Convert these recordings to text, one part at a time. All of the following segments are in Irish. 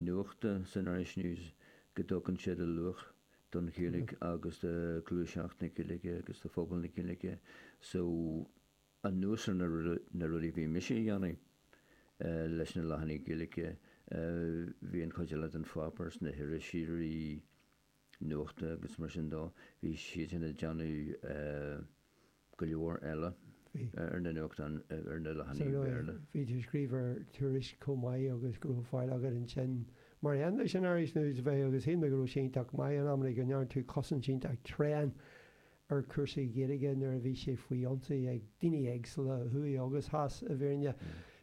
nuachta san Irish News go dtugann siad luach don Ghaeilge agus do ghluaiseacht na Gaeilge agus do phobal na Gaeilge so anuas ar na rudaí a bhí mise a dhéanamh leis na leathanaigh Ghaeilge bhí an chuid eile den pháipéar is na hiriseoirí nuachta agus mar sin de. Bhí siad sin ag déanamh go leor eile ar na nuachtáin, ar na leathanaigh Bhéarla. Bhí tú ag scríobh ar Tuairisc chomh maith agus go raibh faill agat ansin, mar aon leis an Irish News, a bheith agus shíl mé go raibh sé iontach maith in amanna go ndearna tú cosaint iontach tréan ar chúrsaí Gaeilge nuair a bhí sé faoi ionsaí ag daoine éagsúla, thuaidh agus theas, i bhfírinne.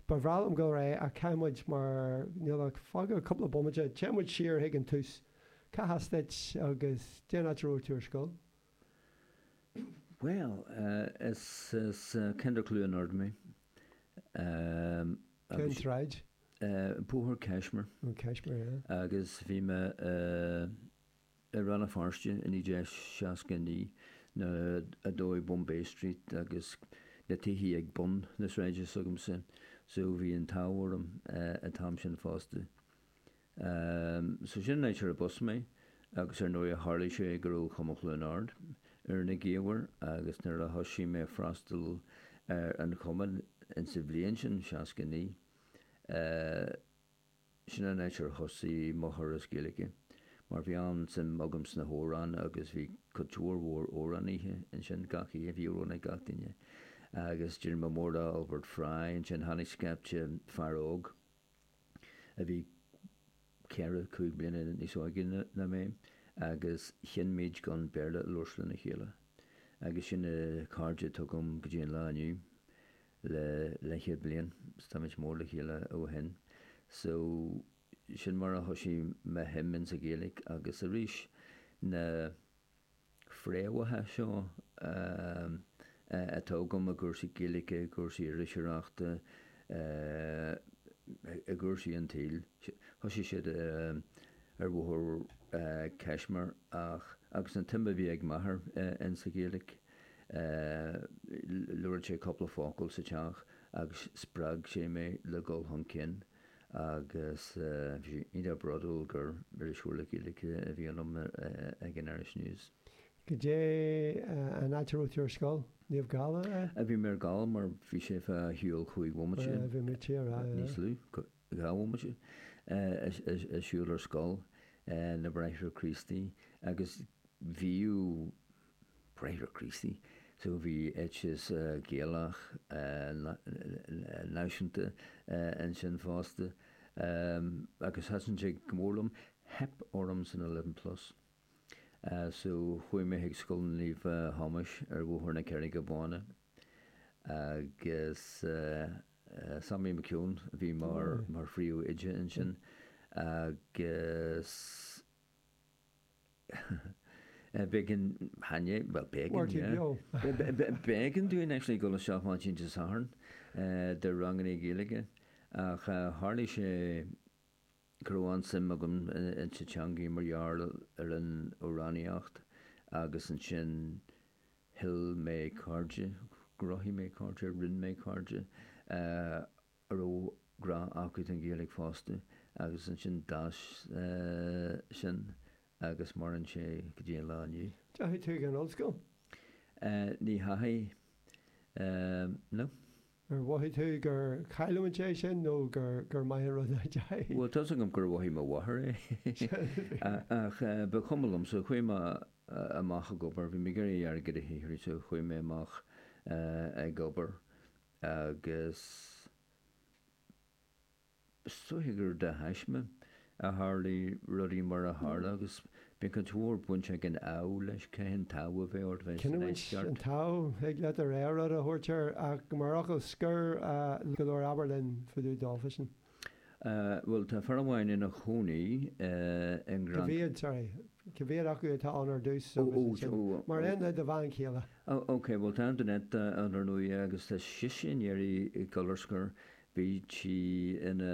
Ba bhreá liom gabháil ar aghaidh ach caithfidh muid, mar níl ach fágtha cúpla bomaite, téann muid siar chuig an tús. Cá has duit agus goidé an áit a raibh tú ar scoil? Bhuel, is as ceantar Chluain Ard mé. Cén tsráid? Bóthar Kashmir. Ó, Kashmir, yeah. Agus bhí mé i Rann na Feirste i 1969 nuair a dódh Bombay Street agus na tithe ag bun na sráide s'agamsa so bhí an t-ádh orm an t-am sin fosta. Um so sin an áit arb as mé, agus ar ndóigh tharlaigh sé go raibh Cumann Chluain Ard ar na gaobhair agus nuair a thoisigh mé ag freastal ar an Chumann in sa bhliain sin, seasca naoi, eh sin an áit ar thosaigh mo thuras Gaeilge mar bhí an-suim agam sna hamhráin agus bhí cuid mhór mhór amhránaithe ansin, gach oíche bhí amhrán ag gach duine agus d'éirigh mé mór le Albert Fry, ansin tháinig scaifte fear óg. a bhí ceithre, cúig bliana níos óige ná mé, agus chinn muid gan Béarla a labhairt lena chéile, agus sin na cairde atá agam go dtí an lá inniu, le leithchéad bliain, 's táimid mór le chéile ó shin. So, sin mar a thoisigh mo shuim insa Ghaeilge, agus arís, na. fréamhacha seo atá agam i gcúrsaí Gaeilge, i gcúrsaí iriseoireachta, i gcúrsaí an tsaoil. Thosaigh siad ar Bhóthar Kashmir ach, agus an tsuim a bhí ag m'athair insa Ghaeilge, labhraíodh sé cúpla focal sa teach agus spreag sé mé le dhul chun cinn. agus bhí sé iontach bródúil gur iriseoir le Gaeilge a bhí ionam ag an Irish News. Goidé an áit a raibh tú ar scoil? Naomh Gall, a. a bhí mé ar Gall mar bhí sé fá shiúl chúig bhomaite, a bhí mé tíar, a. níos lú, dhá bhomaite, ag siúl ar scoil na mBráithre Críostaí agus bhíodh. Bráithre Críostaí so bhí éiteas Gaelach náisiúnta ansin fosta agus thaitin sé go mór liom. Theip orm san Eleven Plus so chuaigh mé chuig Scoil Naomh Thomáis ar Bhóthar na Carraige Báine agus Sammy McKeown a bhí mar phríomhoide ansin agus B'éigean dúinn actually dul isteach maidin Dé Sathairn do ranganna Gaeilge ach tharlaigh sé go raibh an-suim agam insa teangaidh mar gheall ar an amhránaíocht agus ansin thuill mé cairde, chruthaigh mé cairde, rinne mé cairde. a raibh grá acu don Ghaeilge fosta agus ansin d'fhás sin agus maireann sé go dtí an lá inniu. An ndeachaigh tú chuig an ollscoil? Ní dheachaigh, no. Ar mhothaigh tú gur chaill tú an deis sin nó gur maith an rud é nach ndeachaigh? Bhuel, tá's agam gur mhothaigh mo mháthair é ach ba chuma liom so chuaigh mé amach ag obair. Bhí mé ag iarraidh airgead a shaothrú so chuaigh mé amach ag obair. agus is dóiche gur de thaisme a tharlaigh rudaí mar a tharla, agus bíonn cuid mhór baint ag an ádh leis, caithfidh an t-ádh a bheith ort bheith ag Cinniúint an saighdeadh. An t-ádh, thig leat do rogha rud a thabhairt air, ach mar fhocal scoir, go leor abair linn fá dtaobh daofa sin. Bhuel, tá fear amháin ina chónaí i nGaoth. Cibé, sorry, cibé acu atá ann ar dtús agus ansin, mar aon le do bhean chéile. OK, bhuel, tá Antoinette ann ar ndóigh agus tá sise i ndiaidh a ghabháil ar scor. Bhí sí ina